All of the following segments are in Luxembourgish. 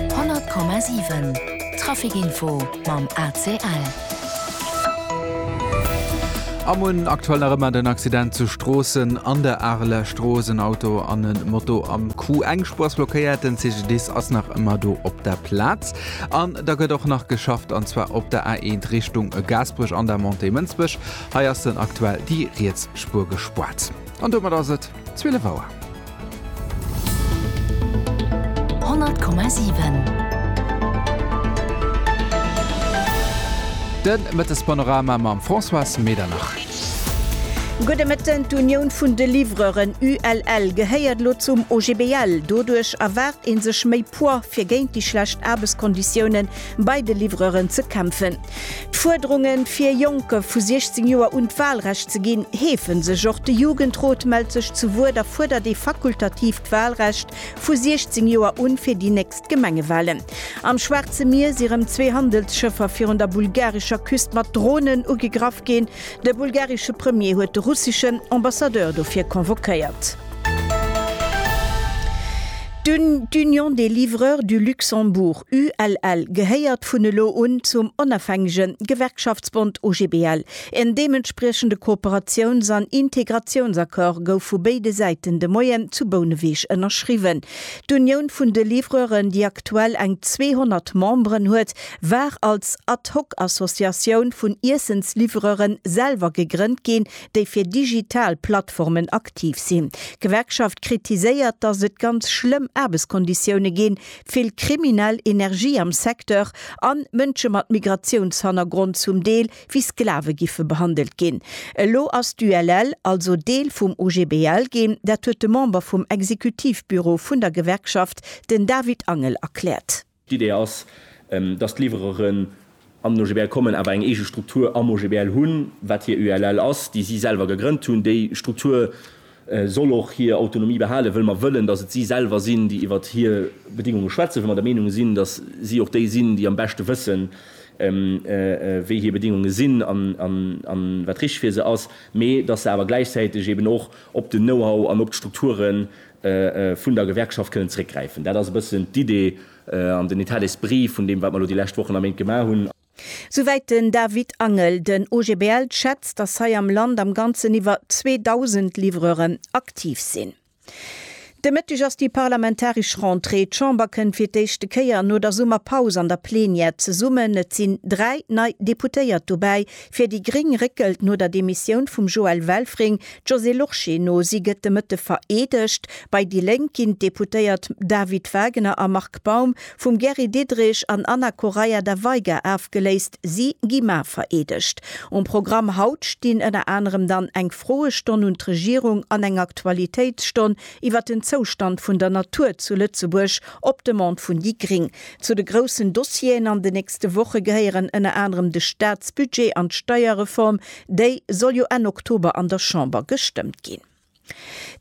100,7 Trafic Info mam ACL. Am un aktuell nach ëmmer den Accident zu Stroossen an der Areler Strooss. En Auto an en Moto am Coup. Eng Spur ass blockéiert, den CGDIS ass nach ëmmer do op der Plaz. An da gëtt och nach geschafft, an zwar op der A1 Richtung Gaasperech an der Montée Mënsbech. Hei ass dann aktuell déi riets Spur gespuert. An domat ass et. 12 Auer. 100,7. De Mëttespanorama mam Françoise Medernach. Gudde Mëtten. D'Unioun vun de Livreuren, ULL, gehéiert elo zum OGBL. Doduerch erwaart ee sech méi Poids, fir géint déi schlecht Aarbechtskonditiounen bei de Livreuren ze kämpfen. D'Fuerderungen, fir Jonke vu 16 Joer un d'Walrecht ze ginn, heefen sech. Och de Jugendrot mellt sech zu Wuert a fuerdert ee fakultatiivt Walrecht vu 16 Joer un fir déi nächst Gemengewalen. Am Schwaarze Mier si rëm zwee Handelsschëffer virun der bulgarescher Küst mat Dronen ugegraff ginn. De bulgaresche Premier huet de russeschen Ambassadeur dofir convoquéiert. D'Union des livreurs du Luxembourg, ULL, gehéiert vun elo un zum onafhängege Gewerkschaftsbond OGBL. En deementspriechende Kooperatiouns an Integratiounsaccord gouf vu béide Säiten de Moien zu Bouneweg ënnerschriwwen. D'Unioun vun de Livreuren, déi aktuell eng 200 Memberen huet, war als Ad-hoc-Associatioun vun Iessensliwwereren selwer gegrënnt ginn, déi fir digital Plattformen aktiv sinn. D'Gewerkschaft kritiséiert, datt et ganz schlëmm Aarbechtskonditioune ginn, vill kriminell Energie am Secteur an Mënsche mat Migratiounshannergrond zum Deel wéi Sklave giffe behandelt ginn. Elo ass d'ULL also Deel vum OGBL ginn, dat huet de Member vum Exekutivbüro vun der Gewerkschaft, den David Angel erkläert. D'Idee ass, dass d'Liwwereren an den OGBL kommen, awer eng eege Struktur am OGBL hunn, wat hir ULL ass, déi si selwer gegrënnt hunn. Déi Struktur soll och hir Autonomie behalen, wëll mer wëllen, dass et si selwer sinn, déi iwwert hir Bedéngunge schwätzen, wëll mer der Meenung sinn, dass si och déi sinn, déi am beschte wëssen, wéi hir Bedéngunge sinn a wat richteg fir se ass, mee dass se awer gläichzäiteg eeben och op den Know-how an op d'Strukturen vun der Gewerkschaft kënnen zréckgräifen. Dat ass e bëssen d'Idee an den Etat d'esprit vun deem, wat mer elo déi lescht Wochen a Méint gemaach hunn. Souwäit den David Angel. Den OGBL schätzt, datt hei am Land am Ganzen iwwer 2.000 Livreuren aktiv sinn. De Mëtteg ass déi parlamentaresch Rentrée. D'Chamber kënnt fir d'éischte Kéier no der Summerpaus an der Plenière zesummen. Et sinn dräi nei Deputéiert dobäi, Fir déi gréng réckelt no der Demissioun vum Joël Welfring d'Josée Lorsché no. Si gëtt de Mëtte vereedegt. Bei déi Lénk ginn d'Deputéiert David Wagener a Marc Baum vum Gary Diderich an Anna Correia da Veiga afgeléist. Si gi mar vereedegt. Um Programm haut stinn ënner anerem dann eng Froestonn un d'Regierung an eng Aktualitéitsstonn iwwer den Zoustand vun der Natur zu Lëtzebuerg op Demande vun déi gréng. Zu de groussen Dossieren an de nächste Woche gehéieren ënner anerem de Staatsbudget an d'Steierreform. Déi soll jo Enn Oktober an der Chamber gestëmmt ginn.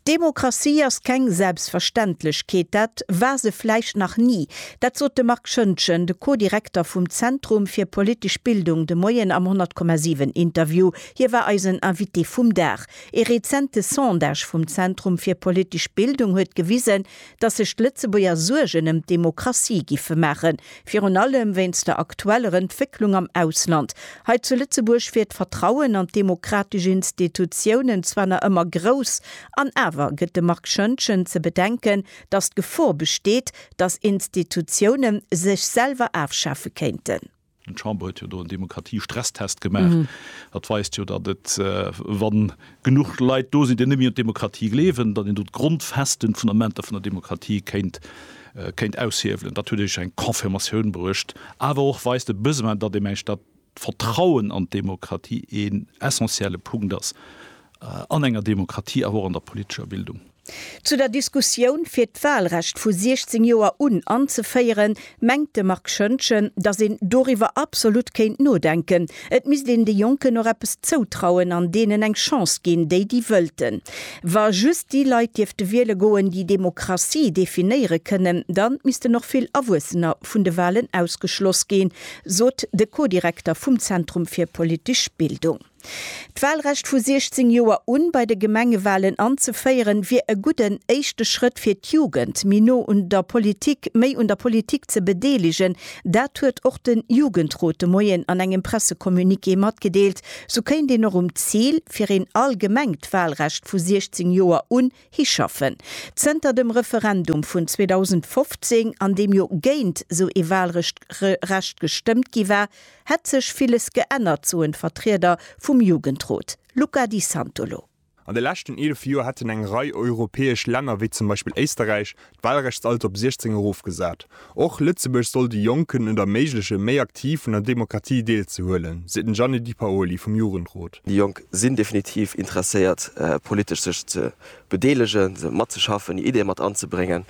Demokratie ass keng Selbstverständlechkeet, dat war se vläicht nach ni. Dat sot de Marc Schöntgen, de Co-Direkter vum Zentrum fir politesch Bildung, de Moien am 100,7 Interview. Hie war eisen Invité vum Dag. Ee rezente Sondage vum Zentrum fir politesch Bildung huet gewisen, datt sech d'Lëtzebuerger Suergen ëm d'Demokratie giffe maachen, virun allem wéinst der aktueller Entwécklung am Ausland. Hei zu Lëtzebuerg wier d'Vertrauen an d'demokratesch Institutiounen zwar nach ëmmer grouss, an awer gëtt de Marc Schoentgen ze bedenken, datt d'Gefor besteet, datt Institutioune sech selwer afschafe kéinten. D'Chamber huet jo do en Demokratie-Stresstest gemaach. Dat weist jo, datt et, wa genuch Leit do sinn, déi net méi un d'Demokratie gleewen, datt een do d'Grondfesten, d'Fundamenter vun der Demokratie kéint, kéint aushiewelen. Dat huet iech eng Confirmatioun bruecht. Awer och weist de Besoin, datt ee mengt, datt d'Vertrauen an d'Demokratie een essentielle Punkt ass an enger Demokratie awer och an der politescher Bildung. Zu der Diskussioun, fir d'Wahlrecht vu 16 Joer un anzeféieren, mengt de Marc Schöntgen, datt een doriwwer absolut kéint nodenken. Et misst een de Jonken och eppes zoutrauen an deenen eng Chance ginn, déi déi wëllten. Wa just déi Leit dierfte wiele goen, déi Demokratie definéiere kënnen, dann missten och vill Erwuessener vun de Wahlen ausgeschloss ginn, sot de Co-Direkter vum Zentrum fir politesch Bildung. D'Walrecht vu 16 Joer un bei de Gemengewalen anzeféieren, wier e gudden éischte Schrëtt fir d'Jugend méi no un der Politik, méi un der Politik ze bedeelegen. Dat huet och de Jugendrot de Moien an engem Pressecommuniqué matgedeelt. Sou kéint een och um Zil, fir een allgemengt Walrecht vu 16 Joer un Hischaffen. Zënter dem Referendum vun 2015, an deem jo géint sou ee Wahlrecht gestëmmt gi war, hätt sech villes geännert, soen d'Vertrieder vum Jugendrot. Luca Di Santolo. An de leschten eelef Joer hätten eng Rei europäesch Länner, wéi zum Beispill Éisterräich, D'Wahlrechtsalter op 16 erofgesat. Och Lëtzebuerg soll de Jonken et erméiglechen, méi aktiv un der Demokratie deelzehuelen, seet den Gianni Di Paoli vum Jugendrot. Déi Jonk sinn definitiv interesséiert, politesch sech ze bedeelegen, matzeschaffen, hir Ideeë mat anzebréngen.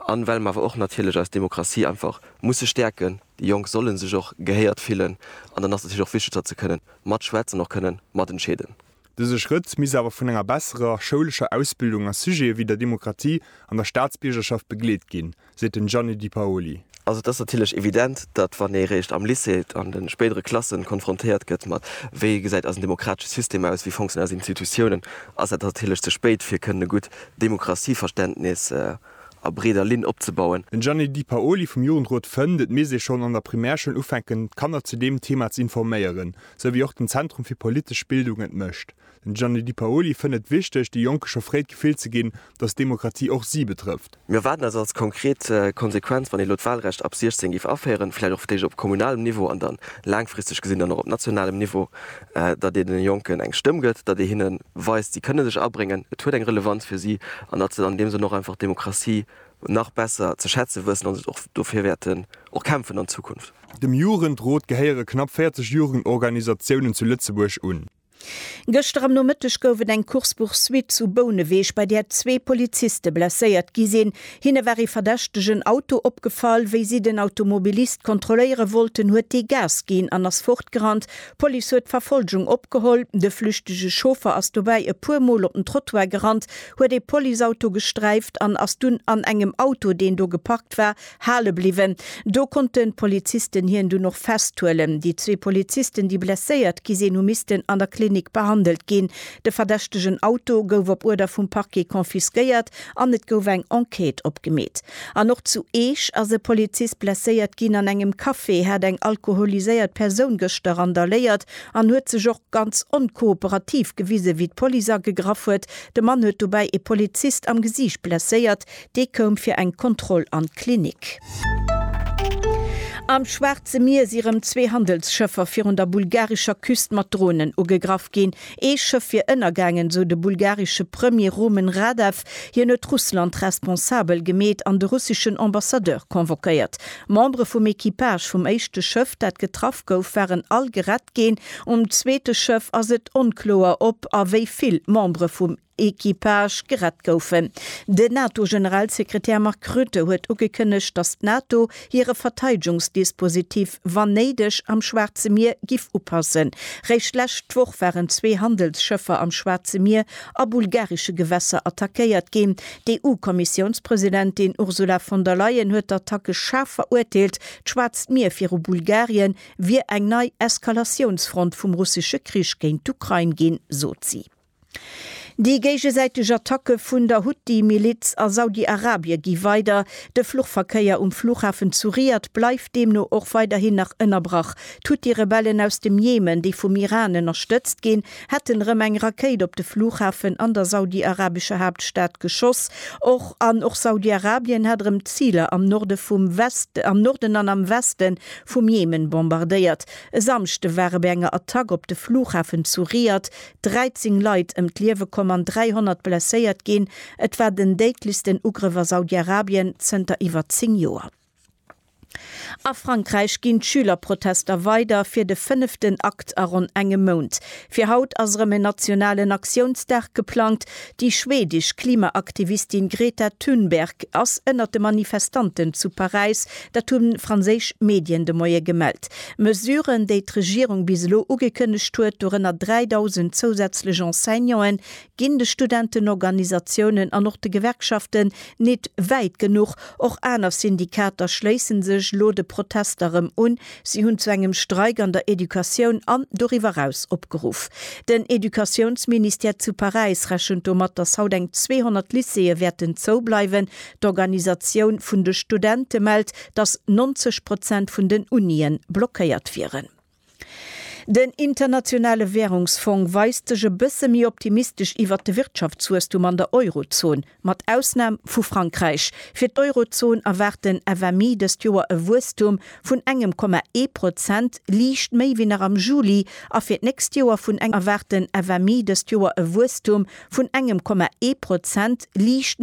An well mer awer och natierlech eis Demokratie einfach musse stäerken, déi Jonk solle sech och gehéiert fillen, an dann ass et natierlech och wichteg, datt se kënnen matschwätzen, och kënnen matentscheeden. Dëse Schrëtt misst awer vun enger besserer schoulescher Ausbildung a Sujete wéi der Demokratie an der Staatsbiergerschaft begleet ginn, seet den Gianni Di Paoli. Also et ass natierlech evident, datt wann ee réischt am Lycée an de spéidere Klassen konfrontéiert gëtt mat, wéi gesäit eisen demokratesche System aus, wéi fonctionnéieren eis Institutiounen, ass dat natierlech ze spéit fir kënnen e gutt Demokratieverständnis a breeder Linn opzebauen. Den Gianni Di Paoli vum Jugendrot fënnt, et misst ee schonn an der Primärschoul ufänken d'Kanner zu deem Thema ze informéieren, sou wéi och den Zentrum fir politesch Bildung et mécht. Den Gianni Di Paoli fënnt et wichteg, de Jonke scho fréi d'Gefill ze ginn, datt Demokratie och si betrëfft. Mir erwaarden eis als konkret Konsequenz, wann ee elo d'Wahlrecht ab 16 géif aféieren, vläicht och fir d'éischt op kommunalem Niveau an da laangfristeg gesinn dann och op nationalem Niveau, datt ee den Jonken eng Stëmm gëtt, datt ee hinne weist, si kënne sech abréngen, et huet eng Relevanz fir si an datt se an deem Sënn och einfach d'Demokratie nach besser ze schätze wëssen an se och dofir wäerten och kämpfen an Zukunft. Dem Jugendrot gehéiere knapp 40 Jugendorganisatiounen zu Lëtzebuerg un. Gëschter am Nomëtteg gouf et eng Course-poursuite zu Bouneweg, bei där zwee Poliziste blesséiert gi sinn. Hinne war ee verdächtegen Auto opgefall. Wéi si den Automobilist kontrolléiere wollten, huet dee Gas ginn an ass fortgerannt. D'Police huet d'Verfolgung opgeholl. De flüchtege Chauffer ass dobäi e puer Mol op den Trottoir gerannt, huet ee Policeauto gesträift an ass dunn an engem Auto, deen do geparkt war, hale bliwwen. Do konnte Polizisten hien dunn och festhuelen. Déi zwee Polizisten, déi blesséiert gi sinn, hu missten an der Klinik behandelt ginn. De verdächtegen Auto gouf op Uerder vum Parquet confisquéiert an et gouf eng Enquête opgemeet. An och zu Eech ass e Polizist blesséiert ginn. An engem Café hat eng alkoholiséiert Persoun gëschter randaléiert an huet sech och. ganz onkooperativ gewisen, wéi d'Police agegraff huet. De Mann huet dobäi ee Polizist am Gesiicht blesséiert. Dee koum fir eng Kontroll an d'Klinik. Am Schwaarze Mier si rëm zwee Handelsschëffer virun der bulgarescher Küst mat Dronen ugegraff ginn. Ee Schëff wier ënnergaangen, sou de bulgaresche Premier Rumen Radev. Hien huet Russland responsabel gemeet an de russeschen Ambassadeur convoquéiert. Membere vum Equipage vum éischte Schëff, dat getraff gouf, waren all gerett. geschafft ginn. Um zweete Schëff ass et onkloer, ob a wéi vill Membere vum Equipage gerett goufen. Den NATO-Generalsekretär Mark Rutte huet ugekënnegt, datt d'NATO hire Verteidegungsdispositif, wann néideg, am Schwaarze Mier giff upassen. Réischt d'lescht Woch waren zwee Handelsschëffer am Schwaarze Mier a bulgaresche Gewässer attackéiert ginn. D'EU-Kommissiounspresidentin Ursula von der Leyen huet d'Attacke schaarf verurteelt. D'Schwaarzt Mier viru Bulgarien wier eng nei Eskalatiounsfront vum russesche Krich géint d'Ukrain ginn, sot si. Déi géigesäiteg Attacke vun der Huthi-Miliz a Saudi-Arabie gi weider. De Fluchverkéier um Flughafen zu Riad bleift deemno och weiderhin nach ënnerbrach. D'Huthi-Rebellen aus dem Jemen, déi vum Iran ënnerstëtzt ginn, hätten erëm eng Rakéit op de Flughafen an der saudiarabescher Haaptstad geschoss. Och an och Saudiarabien hat erëm Ziler am Norde vum am Norden an am Weste vum Jemen bombardéiert. E Samschde ware bei enger Attack op de Flughafen zu Riad 13 Leit ëm d'Liewe komm an 300 blesséiert ginn. Et war den déidlechsten Ugrëff a Saudiarabien zënter iwwer 10 Joer. A Frankräich ginn d'Schülerprotester weider, fir de fënneften Akt a ronn engem Mount. Fir haut ass erëm en nationalen Aktiounsdag geplangt. Déi schwedesch Klimaaktivistin Greta Thunberg ass ënnert de Manifestanten zu Paräis. Dat hu franséisch Medien de Moie gemellt. Mesuren, déi d'Regierung bis elo ugekënnegt huet, dorënner 3.000 zousätzlech Enseignanten, Ginn de Studentenorganisatiounen an och de Gewerkschaften nit wäit genuch? Och aner Syndikater schléissen sech elo de Protester rëm un. Si hunn zu engem Streik an der Educatioun an doriwwer raus opgeruff. Den Educatiounsministère zu Paräis rechent domat, datt haut eng 200 Lycéeë wäerten zou bleiwen. D'Organisatioun vun de Studente mellt, datt 90 Prozent vun den Unien blockéiert wieren. Den Internationale Wärungsfong weist sech e bësse méi optimistesch iwwert de Wirtschaftswuesstum an der Eurozon, mat Ausnam vu Frankräich. Fir d'Eurozon erwaart den FMI dëst Joer e Wuesstum vun engem Komma ee Prozent, liicht méi wéi nach am Juli, a fir d'nächst Joer vun engem erwaart den FMI dëst Joer e Wuesstum vun engem Komma ee Prozent, liicht.